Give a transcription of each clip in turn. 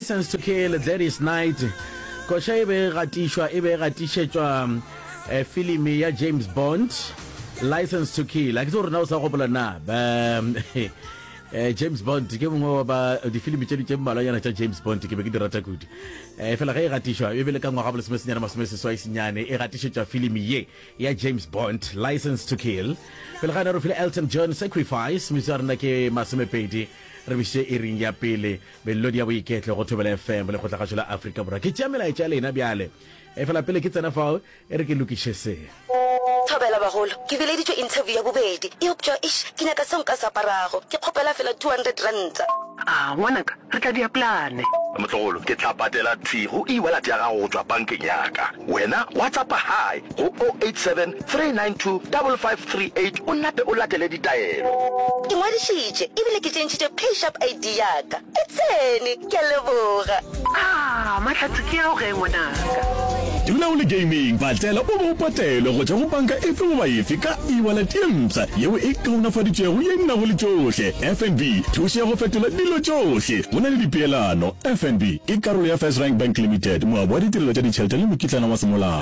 License to Kill, Gladys Knight. Koša e be e gatišwa e be e gatišetšwa eh, filimi ya James Bond, License to Kill. A ke tse rena o sa gopola na? Ba, eh, James Bond ke mongwe wa ba difilimi tše di tše mmalwanyana tša James Bond ke be ke di rata kudu. Eh, fela ge e gatišwa e be le ka ngwaga bolesome senyane masome seswai senyane e gatišetšwa filimi ye ya James Bond, License to Kill. Pele ga ne re file Elton John Sacrifice, misa rena ke masomepedi re biše e ring ya pele Melodi ya Boiketlo go Thobela FM le Kgotlagatšo la Afrika Borwa. Ke tšea melaetša ya lena bjale. Efela pele ke tsena fao, e re ke lokiše se. Thobela bagolo, ke bileditšwe interview ya bobedi, eupša eish ke nyaka seo nka se aparago. Ke kgopela feela two hundred ranta. Aa ngwanaka, re tla dia plane. Motlogolo, ke tla patela thwi go e-wallet ya gago go tšwa bankeng ya ka. Wena wa tsa pa hae. go 087 392 5538 o nape o latele ditaelo. Ke ngwadišitše ebile ke tšentšhitše PayShap ID ya ka. E tsene! Ke a leboga. Aa, mahlatse ke ao ge, ngwanaka? Dula o le gaming, patlela o be o patelwe go tšwa go panka efe goba efe ka e-wallet ye mpsha yeo e kaonafaditšwego ye e nago le tšohle. FNB, thušo ya go fetola dilo tšohle go na le dipeelano. FNB ke karolo ya FirstRand Bank Limited, moabi wa ditirelo tša ditšhelete le mokitlana wa semolao.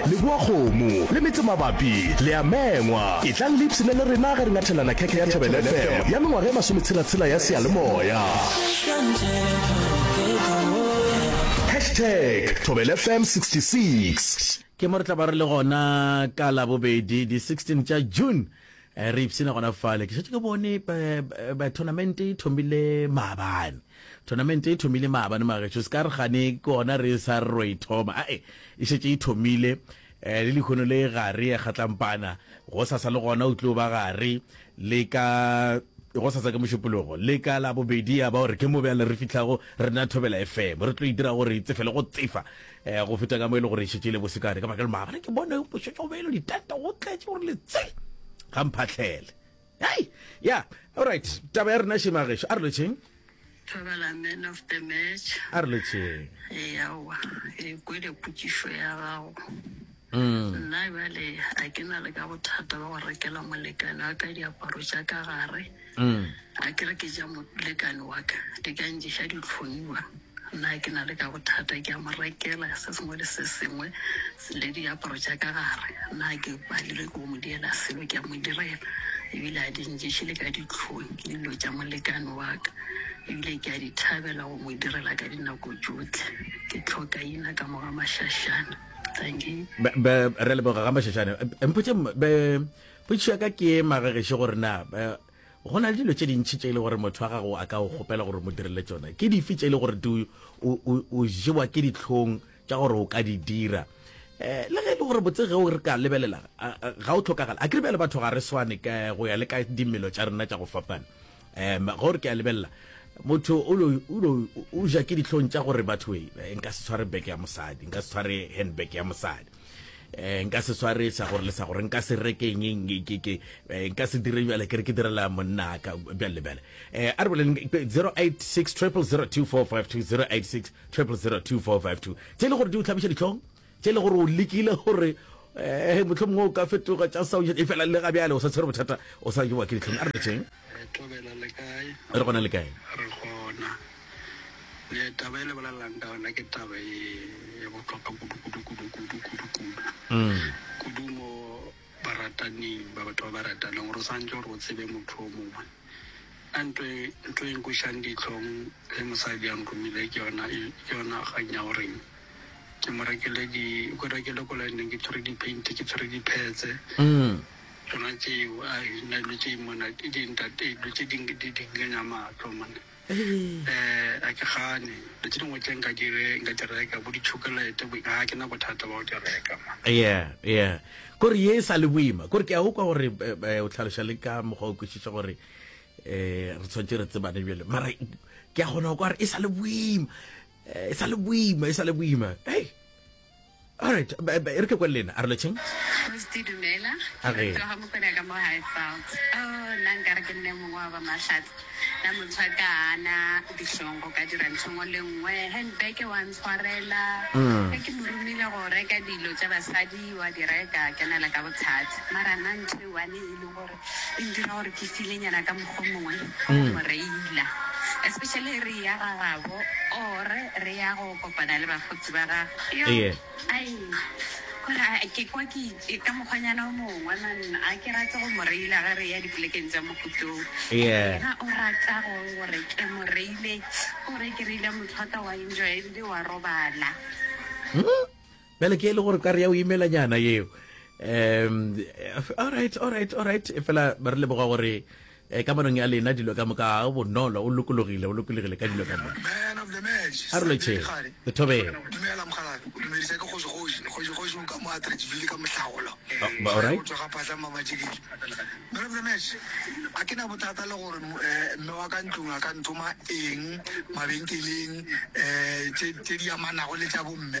Leboakgomo le Metsemabapi le a mengwa. Etlang le ipshine le rena ge re nyathelana khekhe ya Thobela FM ya mengwaga e masometshela-tshela ya seyalemoya. Hashtag Thobela FM 66. Ke mo re tla ba re le gona ka Labobedi di 16 tša June re ipshina gona fale. Ke šetše ke bone tournament e thomile maabane. Thonamente e thomile maabane magetšo, se ka re gane ke gona re sa re ro e thoma. Ae, e šetše e thomile. Eh, le lehono le gare, eh, Kgatlampana. Gosasa le gona o tlo ba gare, le ka, gosasa ke Mošupologo, le ka la bobedi ya ba gore ke mo bjale re fihlago re na Thobela FM. Re tlo e dira gore e tsefele go tsefa, eh, go feta ka mo e le gore e šetše e le bosekane. Ka baka le maabane ke bone bošetšo belo, ditente go tletše gore le tse ga mphahlele. Hey, yeah, all right. Taba ya rena she magesho. A re lo cheng? Thabela man of the match. A re lo cheng? E ya wa. E kwe le putisho ya gago. Mm. Nna bale a ke na le ka bothata ba go rekela molekane wa ka diaparo tša ka gare. Mm. A ke re ke ja molekane wa ka. Di ka nje sha di tlhoniwa. Na ke na le ka bothata? Ke a mo rekela se sengwe le se sengwe le diaparo tša ka gare. Na ke palelwe ke go mo direla selo? Ke a mo direla, e bile a di nješe le ka dihlong. Ke dilo tša molekane wa ka, e bile ke a di thabela go mo direla ka dinako tšohle. Ke tlhokaina ka mo Gamashashane. Dankie. Be, be, re leboga Gamashashane. Mpotše, be, potšišo ya ka ke magagešo gore na, be, Go na le dilo tše dintši tše e le gore motho wa gago a ka o kgopela gore mo direle tšona. Ke dife tše e le gore di o, o, o jewa ke dihlong tša gore o ka di dira? Eh, le ge e le gore botse ge o re ka lebelela a- a- ga o tlhokagala. A ke re bjale batho ga re swane ka go ya le ka dimelo tša rena tša go fapana. Em, ge o re ke a lebelela motho o lo, o lo, o ja ke dihlong tša gore batho, e, nka se tshware beke ya mosadi, nka se tshware handbag ya mosadi. eh nka se sware sa gore le sa gore nka se rekeng eng ke ke eh, nka se dire bjale ke re ke direla monna ka bjale le bjale eh a re boleng 0860002452 0860002452 tse le gore di o tlhabiša ditlhong tse le gore o lekile gore eh motlho mongwe o ka fetoga tsa sa e fela le ga bjale o sa tshwere bothata o sa jewa ke ditlhong a re betseng Re tobela le kae? Re gona le kae? Re gona. Le taba e le bolelelang ka yona ke taba e e botlhokwa kudu kudu kudu kudu kudu kudu. Mm. Kudu mo barataneng ba batho ba ba ratanang gore o santse gore o tsebe motho o mongwe. A ntho e ntho e nkošang ditlhong le mosadi a nromile ke yona e ke yona kgang ya goreng ke mo rekele di ko rekele ko lineng ke tshwere di-paint ke tshwere di-pads. Mm. Tšona tšeo a nna dilo tše mona ke di ntate dilo tše di di di nkenya matlo mona eh a ke gane dilo tše dingwe tše nka di re nka di reka bo di-chocolate bo ga ke na bothata ba go di reka man yeah yeah kore ye e sa le boima kore ke a ukwa gore eh, eh, o tlhaloša le ka mokgwa o kwešiša gore eh re tshwanetse re tsebane bjale mara ke a kgona go kwa re e sa le boima eh, e sa le boima e sa le boima hey Alright, ba- ba- e re ke kwa le lena a re lo cheng Mosdi dumela A re. Ke rata go mokwena ka mo high felt oh nna nkare ke nne mongwe wa ba mahlatse na motho a ka ana ditlhong go ka dira nthongo le nngwe handbag wa ntshwarela Mm. ge ke mo romile go reka dilo tša basadi wa di reka kenela ka bothata mara nna ntho e one e le gore e ntira gore ke file nyana ka mokgwa o mongwe go mo reila especially re ya ga gabo or re ya go kopana le bagotsi ba gago Yo, Ee. ai, gore a- ke kwa ke ke ka mokgwanyana o mongwe man a ke rate go mo reila ge re ya dipolekeng tsa mokutlong Ee. ga o rata go gore ke mo reile gore ke reile motho wa ka wa enjoy ebile wa robala Bjale ke le gore ka re ya o imela nyana yeo. Um, all right, all right, all right. E fela ba re leboga gore eh, ka manong ya lena dilo ka moka ga bonolo o lokologile o lokologile ka dilo ka moka a re loche lethobeng a ke na bothata le gore eh, mme wa ka ntlong a ka nthoma eng mabenkeleng um tse di amanago le tsa bomme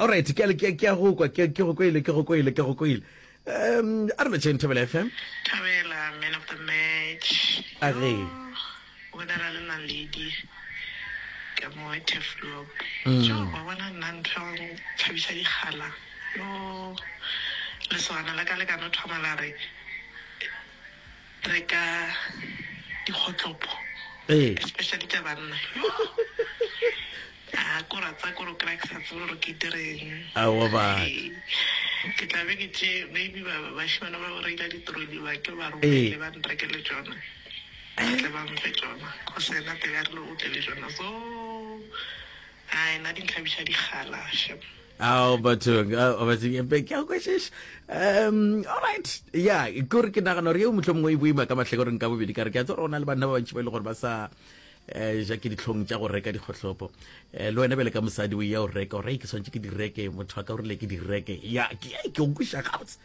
alright ke le ke ya go kwa ke ke go koile ke go koile ke go koile um a re no chain thabela fm Tabela, man of the match. a re O bodela le la lady ka mo Teflop. Jo, wa bona nna ntho ya go thabisa dikgala. Yo, lesogana la ka le ka no thoma la re reka dikgotlopo ee especially tša banna a ko ra tsa kore o kry-a ke sa tsebe gore ke direng aowa ba ke tla be ke tše maybe bashimana ba reila ditroli ba ke ba romele ba nrekele tsona tle ba mfe tsona go sena tebe a rile o tle le tsona so a ena di ntlhabiša dikgala shem ao bathong ao bathong empe ke a kwešeša um allright ya kore ke nagana gore eo motlho mongwe e boima ka matlhekoreng ka bobedi ka re ke a tse gore o na le banna ba bantši ba e le gore ba sa um ja ke ditlhong tša go reka dikgotlhopo um le wena bele ka mosadi o ya o reka o reke ke swantse ke di reke motho wa ka o rile ke di reke ya ke ke o kweša gabotse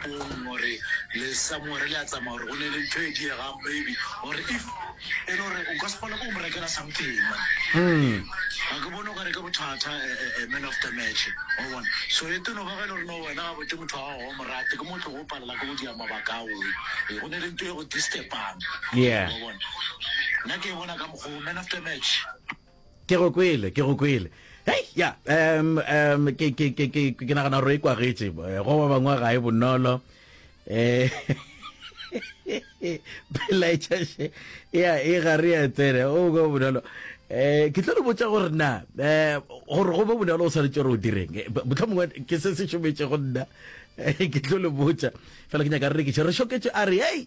Bong gore le somewhere le a tsamaya gore go ne le ntho e diegang maybe or if e le gore o ka se kgone go mo rekela something man ga ke bone o ka re ke bothata eh, eh, eh, man of the match wa bona so e teno ga ge e le gore no wena ga bote motho wa gago wa morate ke motho go palela ke go dia mabaka ao Eh, go ne le ntho e go distepang Yeah. wa bona nna ke e bona ka mokgwa o man of the match Ke go kwele, ke go kwele. Hei, ya, um, um, ke, ke, ke, ke, ke nagana gore e kwagetše. Eh, go ba bangwe ga e bonolo. Eh, pelaetšaše ya e gare ya tsene o go bonolo um ke tlo le botsa gore na um gore go be bonolo o tshwanetse gore o direng botlho mongwe ke se se šometše go nna ke tlo le botsa fela ke nyaka re rekiše re šoketše a re ei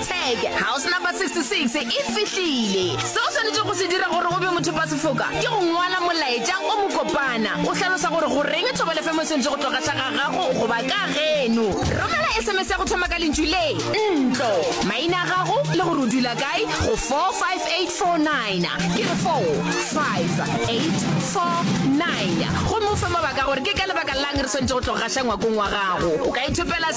Tag House Number 66 e fihlile. Seo o swanetšego go se dira gore o be mothopasefoka ke go ngwala molaetša o mokopana o hlalosa gore goreng thobalefemo e swanetše go tloga tla ga gago goba ka geno. Romela SMS ya go thoma ka lentšu le, ntlo, maina a gago le gore o dula kae go 45849, ke re 45849, gomme o fe mabaka a gore ke ka lebaka la'ng re swanetše go tloga gaša ngwakong wa gago. O ka ithopela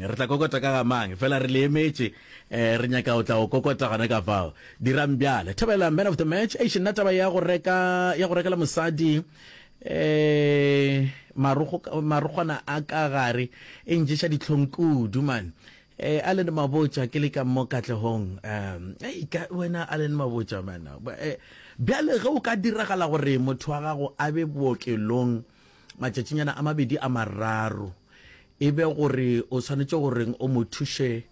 Re tla kokota ka ga mang? Fela re le emetše. Re nyaka go tla go kokota gona ka fao. Dirang bjale. Thabela, man of the match. Eish, nna taba ya go reka, ya go rekela mosadi, um, marokgo, marokgwana a ka gare, e nješa dihlong kudu, man. Um, Allen Mabotja, ke le ka mo Katlehong. Um, ei, ka, wena Allen Mabotja, man. Um, bjale ge o ka diragala gore motho wa gago a be bookelong, matšatšinyana a mabedi a mararo e be gore o swanetše goreng o mo thuše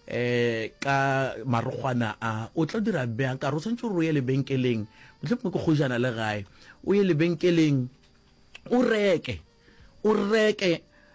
eh ka marogwana a o tla dira bjang ka re o swanetše gore o ye lebenkeleng mohlomongwe ke kgojana le gae o ye lebenkeleng o reke o reke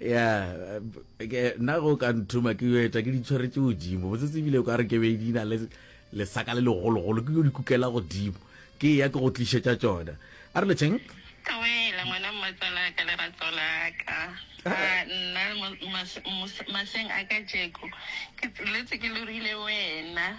ya nna go ka nthuma ke yo eta ke di tshwaretse godimo botse tsebile ka re ke be di na le lesaka le legologolo ke yo di kukela godimo ke ya ke go tlišetša tsona a re letšeng kawela ngwana mmatsala ka lerato la ka ah. nna maseng a ka jeko ke tsetse ke lorile wena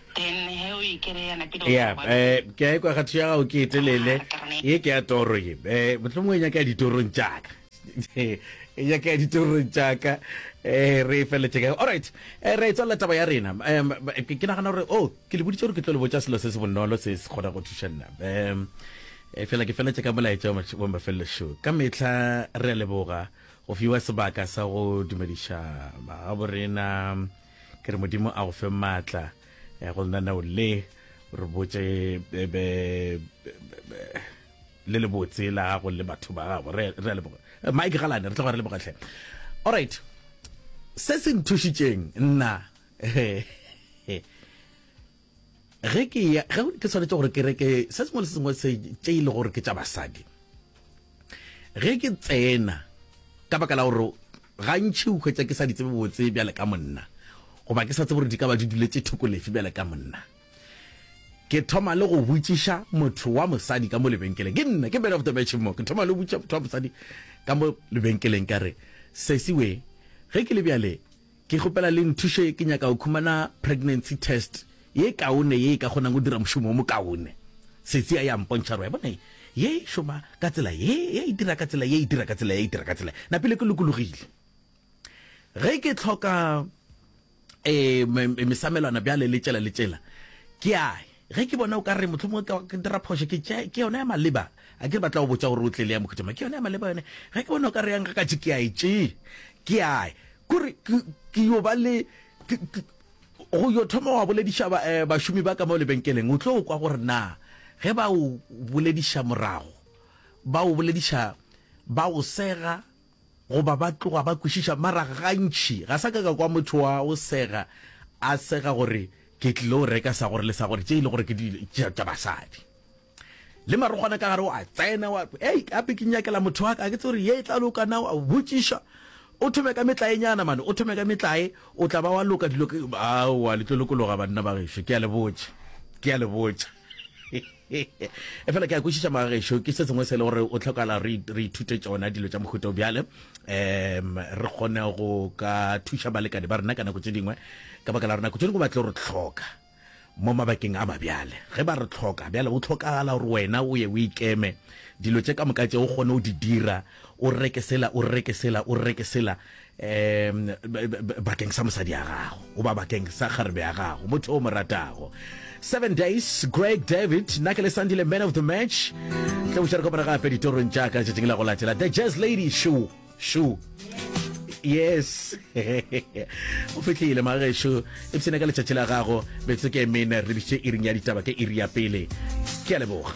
ya eh, ke a ekwa kgatho ya gago ke e telele ye ke ya toro ye um eh, motlhomo e nyaka ya ditorong tsaka e nyaka ya ditorong tsaka um re e feletseke allright eh, re e tswalela taba ya rena um ke nagana gore o oh, ke le boditse gore ke tlo le botsa selo se se bonolo se se kgona go thuša nna um fela ke feletse ka molaetsa wa mafelelo show ka metlha re a leboga go fiwa sebaka sa go dumediša magabo rena ke re modimo a go fe maatla ya go lenaneo le re botse le le botse la gago le batho ba gago re a leboga eh, mike galane re tla go re lebogatlhe all right se se nthušitšeng nna ge ke ya ge ke tshwanetse gore ke reke se sengwe le sengwe se tše e le gore ke tša basadi ge ke tsena ka baka la gore gantšhi o hwetša ke sa di tsebe botse bjale ka monna goba ke sa tsebe gore di ka ba di duletse thoko lefe bjale ka monna ke thoma le go botšiša motho wa mosadi ka mo lebenkeleng ke nna ke bene of the match mo ke thoma le go botšiša motho wa mosadi ka mo lebenkeleng ka re sesiwe ge ke le bjale Ke kgopela le nthuše ke nyaka go khumana pregnancy test ye kaone ye e ka kgonang go dira mošomo wo mokaone. Setsi a ya mpontšha gore, bona ye, ye e šoma ka tsela ye, ye e dira ka tsela ye, e dira ka tsela ye, e dira ka tsela ye. Napile ke lokologile. Ge ke hloka, ee, mesamelwana bjale le tšela le tšela, ke a Ge ke bona o ka re mohlomongwe ka ke dira phošo, ke tše ke yona ya maleba. A ke ba tla go botša gore o tle le ya mokhuthama. Ke yona ya maleba yone. Ge ke bona o ka re ya ngakatše, ke a e tše. Ke a e. Kore ke, ke yo ba le, ke, ke, go yo thoma wa bolediša ba, eh, bašomi ba ka mo lebenkeleng, o tlo o kwa gore na ge ba o bolediša morago, ba o bolediša ba o sega, Goba ba tloga ba kwešiša, mara gantši ga sa ka ka kwa motho wa go sega a sega gore, Ke tlile go reka sa gore le sa gore, tše e le gore ke dilo tša basadi. Le marokgwana ka gare o a tsena, wa re, Hei, gape ke inyakela motho wa ka, ga ke tsebe gore ye e tla loka na, wa botšiša. O thome ka metlaenyana mane, o thome ka metlae, o tla ba wa loka dilo. Aowa, le tlo lokologa banna ba gešo, ke a le botša, ke a le botša. efela ke a kwešiša magešo ke se sengwe se le gore o tlhokala re ithute tsona dilo tša mohuta o bjale um re kgone go ka thuša balekane ba rena ka nako tse dingwe ka baka la re nako tse dingwe ba tlo re tlhoka mo mabakeng a mabjale ge ba re tlhoka bjale o tlhokagala gore wena o ye o ikeme dilo tse ka moka tse o kgone o di dira O rre ke sela, o rre ke sela, o rre ke sela, um bakeng sa mosadi ya gago goba bakeng sa kgarebe ya gago, motho o mo ratago. Seven Days, Craig David, nna ke le Sandile man of the match. Tle o šere kopana gape ditorong tša ka letšatšing la go latela. The Jazz Lady, shu, shu. Yes. o fitlhile magesho e bsene ka letšatši la gago betso ke mene re bitše iring ya ditaba ke iri ya pele ke a leboga